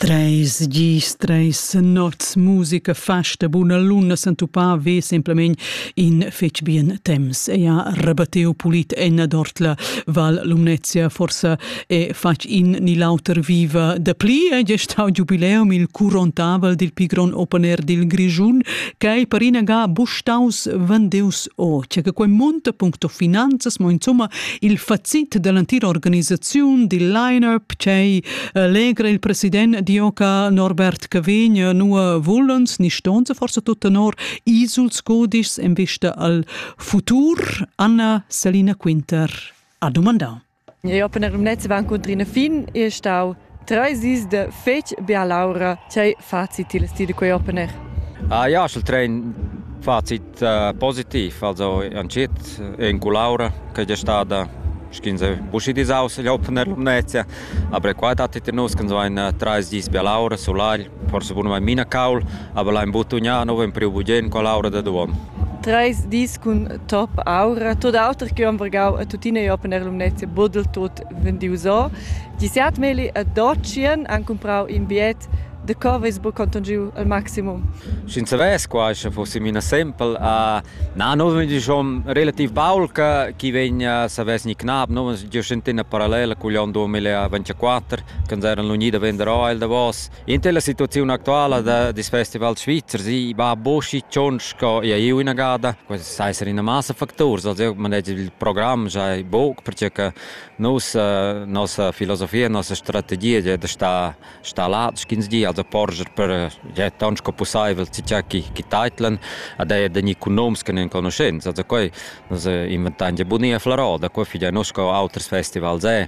Treis gis, treis nots, musica, festa, buna luna s'entupà ve semplamein in fetg bien temps. Ei ha rebattiu pulit ennadort la Val Lumnezia, forsa è fatg in ni l'auter viva dapli. Ei è stau giubileum il curontavel dil pigron open air dil Grischun, ch'ei per inaga bustaus vendeus o, che quei monta puncto finanzas, mo insomma Il facit dall'entira organisaziun dil line-up ch'ei allegra il president Dioca Norbert Cavegn nua vulens ni ston se forsa tut tenor isuls codischs en vista al futur Anna Selina Quinter ha dumandà. Eu per in Netz van cuntrina fin e stau Treis dis de fetg bialaura, tgei facit il sti de quei open air? Ah, ja, il trein facit uh, positiv, also entschiet en cu l'aura che è stada sch'ins è buschi disaus gli open air Lumnezia, aber qua dattet in nus so ein treis dis bia l'aura sulagl, forse bun mai mina caul, aber l'ha imbuttugnà nov in priu bugen con l'aura da duon. Treis dis cun top aura, tot auter che Ambergau e tuttina gli open air Lumnezia budel tut vendius o. Disiat Meli a Docien han cumprau in biet de covers bu conton giu al maximum. Sch'in savess qua sche fosse mina sempel a na no vegn schon relativ baul che chi vegn savess ni knab no vegn jen tena parallela cu gli on 2024 che eran l'unida vender o el davos Inter la situaziun actuala da des festivals svizzers i va boschi tschont sco ia iu inagada. Quels sai esser ina massa facturs. Also eu manegi il program giai buc perche che nus eh, nossa filosofia, nossa strategia è da star sta là sch'ins di, also porscher per ja, tant sco pussaivel tgei chi chi teitlan ad eir da economs che non conoscents. Also quei nus eh, inventan ja bunia flarò, da quei figlia nus co auters festivals è.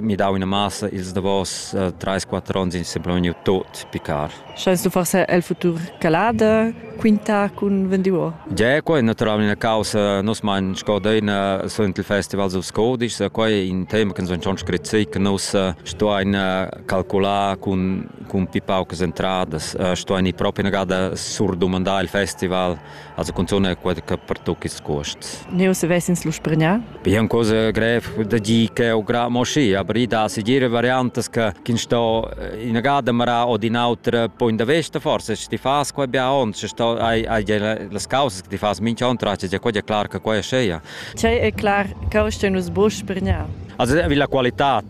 mi dau ina massa ils davos uh, 3-4 ons in sembla vegniu tot picar. Scheis du far el futur calada, quinta cun vendiuo? Ja, quei è naturalmente una causa, nos mein scodeina sunt il festival sus codice, quei è un tema che sono schon scritto, che nos sto ein calcolar con con pipaucas entradas, sto ein proprio una gada sur domandare il festival Also cunzun quella che pertoc ils cuosts. Neu se vesins lu spregnà? Be è cosa grev da dir che o gra mo schi, aber i da segir variantas che kin sto in gada mara o din autra poi da vesta forse sti fas qua bia on, se sto hai hai las causas che ti fas mincha on traccia, è quella clar che qua è sceia. Cei è clar che o sto nus bo spregnà. Also vi la qualità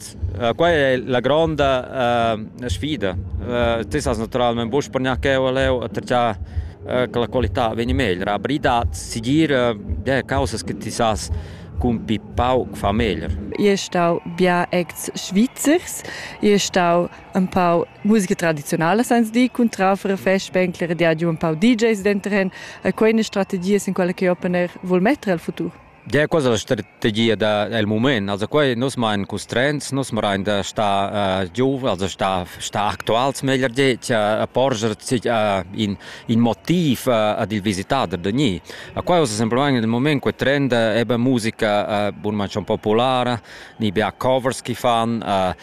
Quai è la gronda uh, sfida. Uh, tu sas naturalment buc per gnanc cheu leu attatgiar uh, che la qualità vegni meglier. Abridad, sigir uh, ja, causas che ti sas cun pi pauc fa meglier. Io stau bia ex Schweizers, io stau un pau musica tradizionale senza di cun trafere festspengler, di ha giù un pau DJs dentro hen, e quelle strategie in quelle che opener vuol mettere al futur. Ja, quella è la strategia del moment. Also qua nus main constraints, nus merain da star uh, giuf, also star, star actuals meglier det, a porger uh, in, in motiv uh, ad il visitader da ni. A qua usa semplament nel moment quel trend è be musica uh, bun mancion populara, ni be covers che fan, uh,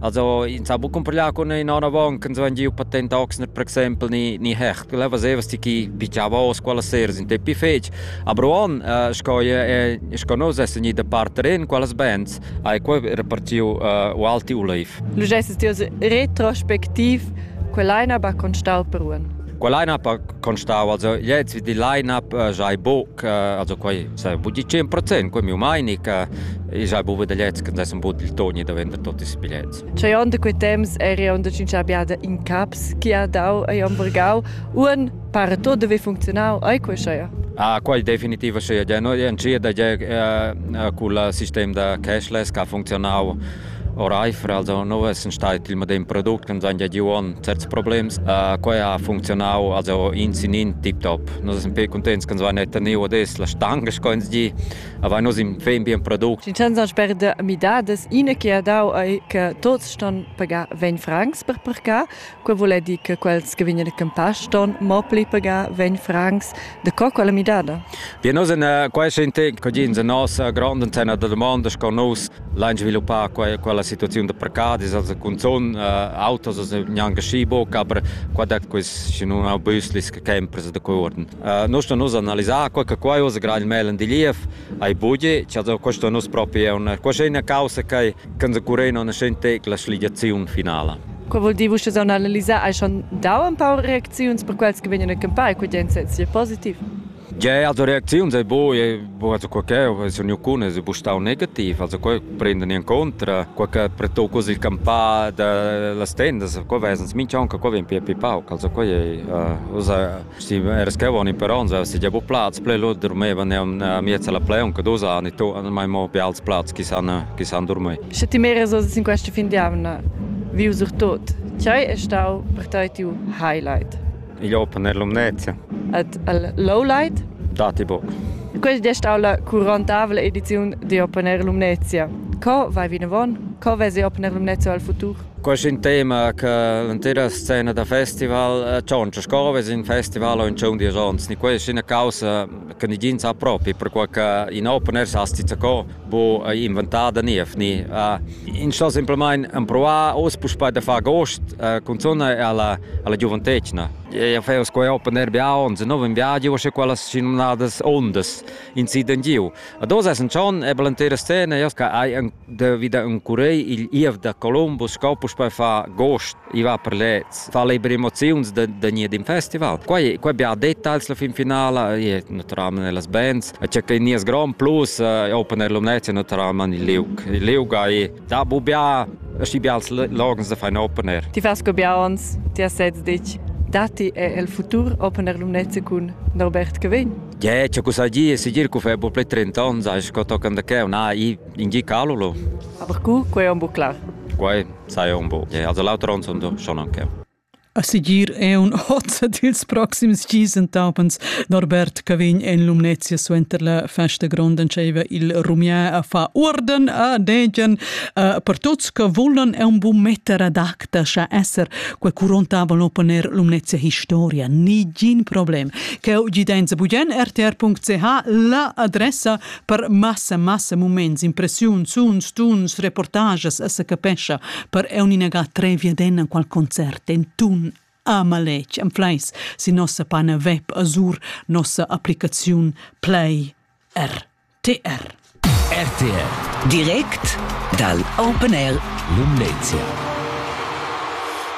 Also, ins ha bu cumparglià con ina avant che ins giu patent oxner per exempel ni ni hecht, quella vaseva sti chi picciava os quella sera sin te pi fetg. A Bruon, sco je sco nos es ni da parter in quellas bands, hai quei repartiu u alti uleif. Nu gesses ti retrospectiv quell'aina ba constau per Ruan? Quella line-up ha constau, also jetzt wie die Line-up äh, sei buc, äh, also quei sai buca 100 procent quei miu meini che i sai buca dagliets che dessem buca il toni da vender tutti i biglietti. Cei onn da quei temps eri onn da cinciar biada in caps chi ha dau ei hamburgau un para tot deve funzionau ai quei scheia. Ah, quel definitiv scheia. No, ncia da ge uh, uh, col sistem da cashless che ha funzionau Oreifer also nu essan stait il medem product ch'ans haja giu on certs problems. Quai ha funcziunau also ins in in tiptop. Nus essan pe cuntents ch'ans vain teniu adess la stanga sco ins di. Avain nus in fin bien product. Ins ha sper midadas, ina che ha dau ei che tuots ston pagar ventg francs per parcar. Quei vul dir che quels che vegnan a campar ston mo pli pagar vegn francs de co quella midada. Wir nusen äh, quai ist ein Ding, che in nossa grande antenna da domanda che nus lain sviluppar quella, quella situazione da precadis, also con son äh, autos also neanche schibo, aber qua dat quis in un bus che sempre da corden. Äh, noi sto nus analizzare quel che quai usa gerade il Melen di Lief Ei buca cha da questo nus propi auna. Questa è una causa che can occurrer non scen tec la sligiaziun finala. Quei vul dir, vus saun analisar, hai schon dau ein paar reacziuns per quels che vegnan a campar, quei ein sia positiv. Ja, also Reaktionen sind bo, also qualche, se ognuno è bustau negativ, also qualche prendono in contra, qualche preto così il campà da las tendas, qual vesens minch'anche, qual ven più più pauc, also quai è, usa Steva era scavan in peronza, se gia bu plaz ple lo dormevan a miez alla pleon che dos anni to mai mo be als plaz chi san chi san dormir. Sche ti meres oz in questa fin di amna viu sur tot, chai è stau per tai tiu highlight? Il open air lumnezia. At al lowlight? Dati boc. Questa è stata la curantavole edizione di Open Air Lumnezia. Co vai vinavon? Co vesi Open Air Lumnezia al futur? Quest ün tema cha l'entera scena da festival tschontscha sco vess ün festival o ün tschun diesch ons. Questa è üna causa che nigin sa propi, perquai cha in open air s'ha sti zacò bu inventà da niev ni. Ins sto simplamaing empruvar uss puspei da far gust cunzunt alla alla giuventetgna. Eu fais quai open air biauns, nouv in viadi, uschè quellas schinumnadas undas, in sit in giu. A dos es ün tschon e be l'entera scena, eu Devi da ün curei igl IEF da Colombo sco puspei fa agost i va per lez fa le emozions da da nie din festival quai quai bia details la fin finala e naturalmente nelle bands c'è che nies grand plus open alumnati naturalmente il liug il liug ai da bu bia schi bia logens da fai opener ti vas go bia ons ti has sez dich dati è il futur open alumnati cun Norbert Cavegn Ja, c'è cosa di, si dir che fa po play 30 anni, sai, che toccano da che, na, i In gi calolo. Aber cu, quei è un bu clar. Quei sai un bu. Ja, also lauter uns und schon anche. A sigir è un hozza dils proxims gis entapens Norbert Cavegn en Lumnezia suenter la festa gronda diceva il rumier a fa urden a degen uh, per tuts che volan è un buon metter ad acta scha esser quel curontava l'oponer Lumnezia Historia nigin problem che gidenza bugen rtr.ch la adressa Per massa massa muments, impressiuns, suns, tuns, reportages, se capescha per eu negar tre viaden a qual concert en tun a maletg am fleis si nossa pana web azur nossa applicaziun Play RTR. RTR direct dal Open Air Lumnezia.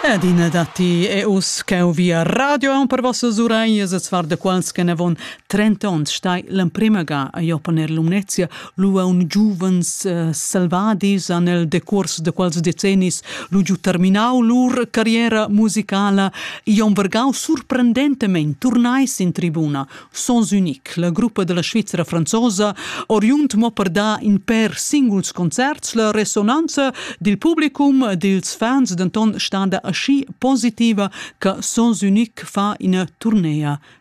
Adina datti e us ch'eu via radio aun per vossa suraias e svar da quals che ne von trenta onns stai l'emprema ga a Jopan er Lumnezia lu un giuvens uh, selvadis an el decurs de quals decennis lu giu terminau lur carriera musicala Ion Vergau surprendentemente turnai in tribuna Sons Unique la gruppa della Svizzera franzosa oriunt mo per da in per singuls concerts la resonanza dil publicum dils fans denton standa aschi positiva che Sons Unique fa ina tournea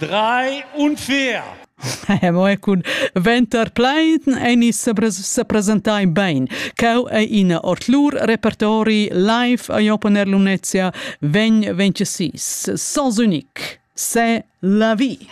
Drei unfair! Mo e cun venter plein ein se presentai bein. Cau ei ina ortlur repertori live a Jopen er Lunezia vegn 26 sans unique. C'est la vie.